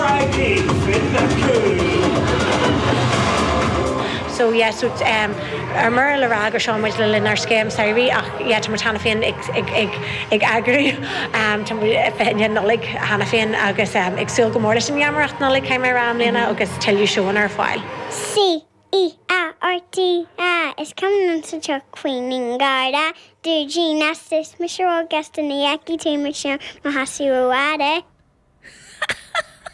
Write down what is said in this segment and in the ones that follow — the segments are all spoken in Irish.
RIP Finda Cool. So yeah so um ar mór le rá gur seo muid le linn ár scéim samhraidh ach yeah tá muid cheana féin ag ag ag ag eagrú um tá muid ar fiche Dé Nollaig cheana féin agus um ag súil go mór leis an gheamaireacht Nollaig Chaiméará i mbliana agus tuilleadh seóanna ar fáil. Sea. E A R T A! Is cuma liom sa tsioc faoi aon gharda, dúidín lasta, tá mise róghasta, ní fheicfidh tú mise i mo sheasamh rófhada.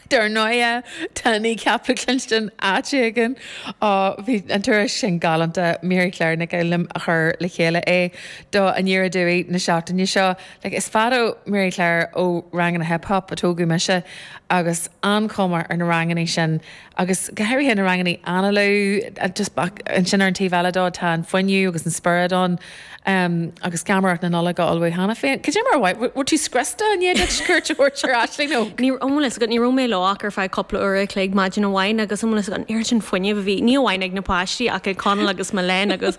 Dar ndóighe, tá Kneecap le cluinstin áit éigin. Ó, bhí an turas sin galánta. Mary Claire Nic Fhoghlum a chuir le chéile é do Aniar Aduaidh na seachtaine seo. Like, is fada, Mary Claire ó ranganna hip-hop a tógadh mise agus an-chuma ar na rangannaí sin. Agus go háirithe na rangannaí anála, just back, ansin ar an taobh eile dó tá an fuinneamh agus an spiorad ann, agus geamaireacht na Nollag á ullmhú cheana féin. Cad é mar a mhaith, bhfuil tú scriosta i ndiaidh duit cuairt a thabhairt ar Aisling Óg. Ní, an bhfuil fhios agat, ní raibh mé leo ach ar feadh cúpla uair a' chloig maidin amháin agus an bhfuil fhios agat, an oiread sin fuinnimh a bhí, ní amháin ag na páistí ach ag Conall agus Mylène agus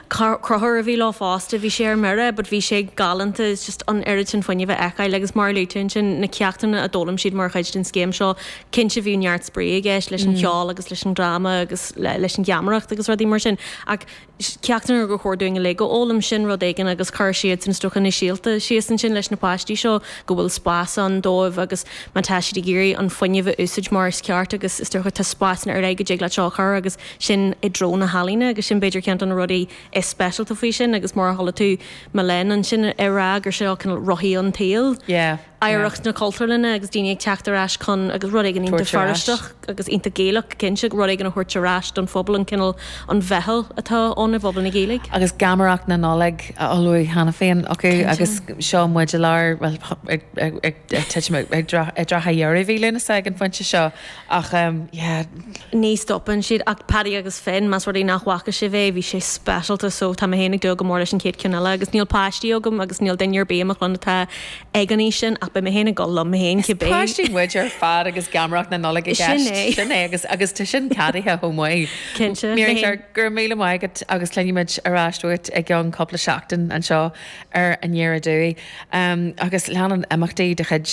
Crothúr a bhí leo fosta, bhí sé ar mire but bhí sé galánta, just an oiread sin fuinnimh a fheiceáil agus mar a luaigh tú ansin na ceachtanna a d'fhoghlaim siad mar chuid den scéim seo, Cinnte bhí neart spraoi i gceist leis an cheol agus leis an dráma agus leis an gheamaireacht agus rudaí mar sin ach ceachtanna gur chóir dúinn uilig a fhoghlaim sin, rud éigin agus chuir siadsan is dócha na síolta síos ansin leis na páistí seo go bhfuil spás ann dóibh agus má tá siad ag iarraidh an fuinneamh a úsáid mar is ceart agus is dócha tá spásanna ar leith go dtig leat seo a chur agus sin i dtreo na healaíne agus sin b'fhéidir ceann de na rudaí is speisialta faoi sin agus mar a chuala tú Mylène ansin ag rá gur seo cineál rothaí an tsaoil. Yeah. oidhreacht na Cultúrlainne agus daoine ag teacht ar ais chun agus rud éigin iontach Feirsteach agus iontach Gaelach cinnte, rud éigin a thabhairt ar ais don phobal, an cineál, an mheitheal atá ann i bpobal na Gaeilge. Agus geamaireacht na Nollag á ullmhú cheana féin acu agus seo muid i lár, bhuel ag titim, i dtrátha dheireadh mhí Lúnasa ag an phointe seo. Ach em yeah. Ní stopann siad ach Paddy agus Finn, más rud é nach bhfaca sibh é bhí sé speisialta so tá mé féin ag dúil go mór leis an chéad cheann eile agus níl páistí agam agus níl duine ar bith i mo chlann atá ag an aois sin ach beidh mé féin ag dul liom féin cibé. Is páistí muid ar fad agus geamaireacht na Nollag i gceist. Sin é. Sin é agus agus tá sin ceadaithe chomh maith. Cinnte. Mary Claire, go raibh míle maith agat agus cluinfimid ar ais uait i gceann cúpla seachtain anseo ar Aniar Aduaidh. Agus leanann imeachtaí de chuid,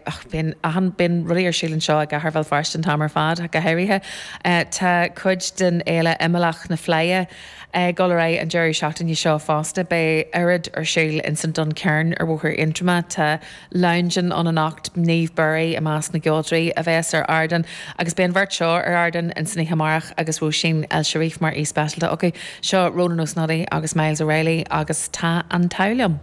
och, bíonn achan, bíonn rudaí ar siúl anseo i gcathair Bhéal Feirste an t-am ar fad ach go háirithe. Tá cuid den fhéile imeallach na Fleidhe ag dul ar aghaidh an deireadh seachtaine seo fosta. Beidh oiread ar siúl ins an Duncairn ar Bhóthar Aontroma. Tá leabhndin ann anocht, Niamh Bury i measc na gceoltóirí a bhéas ar ardán agus beidh an bheirt seo ar ardán ansin oíche amárach agus Róisín El Cherif mar aoi speisialta acu. Seo Rónan Ó Snodaigh agus Myles O'Reilly agus tá an t-ádh liom.